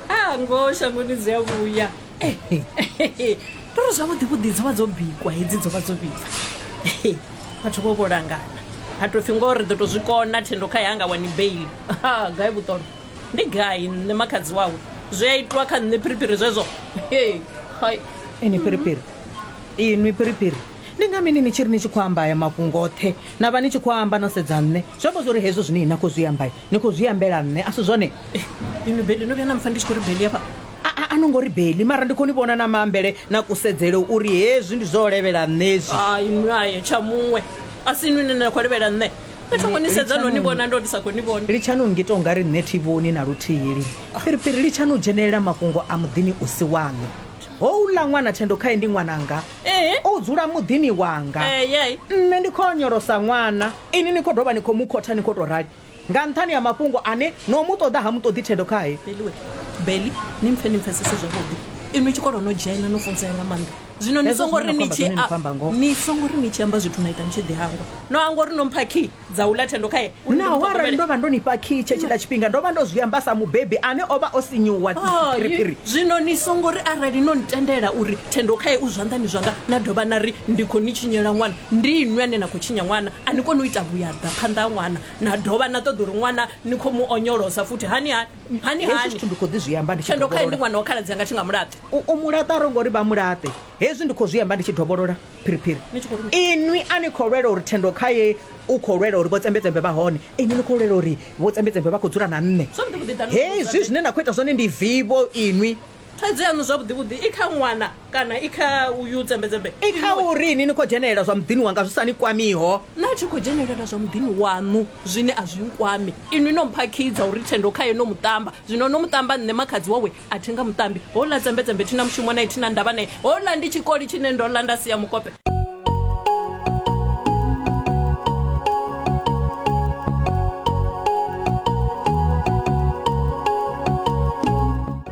a ngoho shangoni dzi a vhuya ndo ri zwavhuḓi vhuḓi dzo vha dzo bikwa hedzi dzo vha dzo vhibva vhathu vho vho langana ha tou pfhi ngoho ri ḓo tou zwi kona thendo kha yanga wani bail ha gai vhuṱono ndi gai nṋe makhadzi wawe zwi a itwa kha nṋe phiriphiri zwezwo hai ini phiriphiri inwi phiriphiri ndi nga mini ni tshi ri ni tshi khou amba aya mafhungo oṱhe na vha ni tshi khou amba no sedza nṋe zwi amba zwori hezwo zwine na khou zwi amba ni khou zwi ambela nṋe a si zwone inwi beli no vhuya na mpfa ndi tshi khou ri beli afha a no ngo ri beli mara ndi khou ni vhona na maambele na kusedzele uri hezwi ndi zwo levhela nṋe hezwi inwi aye tsha muṅwe a si inwi nine na khou levhela nṋe ni thongo ni sedza no ni vhona ndo ndi sa khou ni vhona litshani u ngita ungari nṋe thi vhoni na luthihi lini piripiri litshani u dzhenelela mafhungo a muḓini u si waṋu houḽa ṅwana thendo khae ndi ṅwananga Ee. u dzula muḓini wanga Eh, yai. nṋe ndi khou onyolosa ṅwana ini ni khou dovha ni khou mu khotha ni khou tou rali nga nṱhani ha mafhungo ane no mu ṱoḓa ha mu ṱoḓi thendo khae beliwe beli ni mpfe ni mpfesese zwavhuḓi inwi tshikolo no dzhena no funzea nga maanḓa zwino ni Hezwo songo zwine ri na ni khou amba tshi zwone ni khou amba ngoho. ni songo ri ni tshi amba zwithu na ita ni tshi ḓi hangwa no hangwa uri no mpha key dza u ḽa thendo khae uri ndi mu Naho arali ṱhogomele. ndo vha ndo ni fha khiyi tshetshila tshifhinga ndo vha ndo zwi amba sa mubebi ane o vha o sinyuwa Hai, phiriphiri zwino ni songo ri arali no ntendela uri thendo khae u zwanḓani zwanga na dovha na ri ndi khou ni tshinyela ṅwana ndi inwi ane na khou tshinya ṅwana a ni koni u ita vhuyaḓa phanḓa ha ṅwana na dovha na ṱoḓa uri ṅwana ni khou mu onyolosa futhi hani hani hani hezwi hani zwithu ndi khou ḓi zwi amba ndi tshi thendo khae ndi dovholola ṅwana wa khaladzi anga thi nga mulaṱi u u mulaṱa ro ngori vha mulaṱe hezwi ndi khou zwi amba ndi tshi dovholola phiriphiri inwi a ni khou lwela uri thendo kha ye u khou lwela uri vhotsembedzembe vha hone inwi ni khou lwela uri vhotsembedzembe vha khou dzula na nṋe hezwi zwine na khou ita zwone ndi vivo inwi thaidzo yaṋu zwavhuḓivhuḓi i kha ṅwana kana i kha uyu tsembedzembe i kha uri ni ni khou dzhenelela zwa muḓini wanga zwi sa ni kwamiho na tshi khou dzhenelela zwa muḓini waṋu zwine a zwi nkwami inwi no mphakhidza uri thendo khaye no muṱamba zwino no muṱamba nṋe makhadzi wawe a thi nga muṱambi houḽa dzembedzembe thi na mushumo nae thi na ndavha nae houḽa ndi tshikoli tshine ndo ḽa nda sia mukope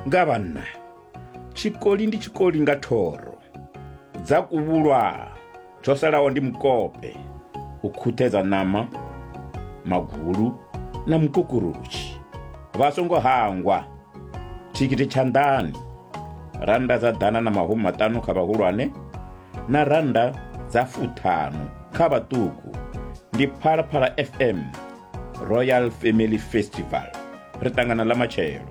nga vhanna tshikoli ndi tshikoli nga thoro dza kuvhulwa tsho salaho ndi mukope u khuthedza ṋama magulu na mukukurutshi vha songo hangwa thikhithi tshanḓani rannda dza ḓana na mahumi maṱanu kha vhahulwane na rannda dza fuṱhanu kha vhaṱuku ndi phalaphala fm royal family festival ri ṱangana ḽa matshelo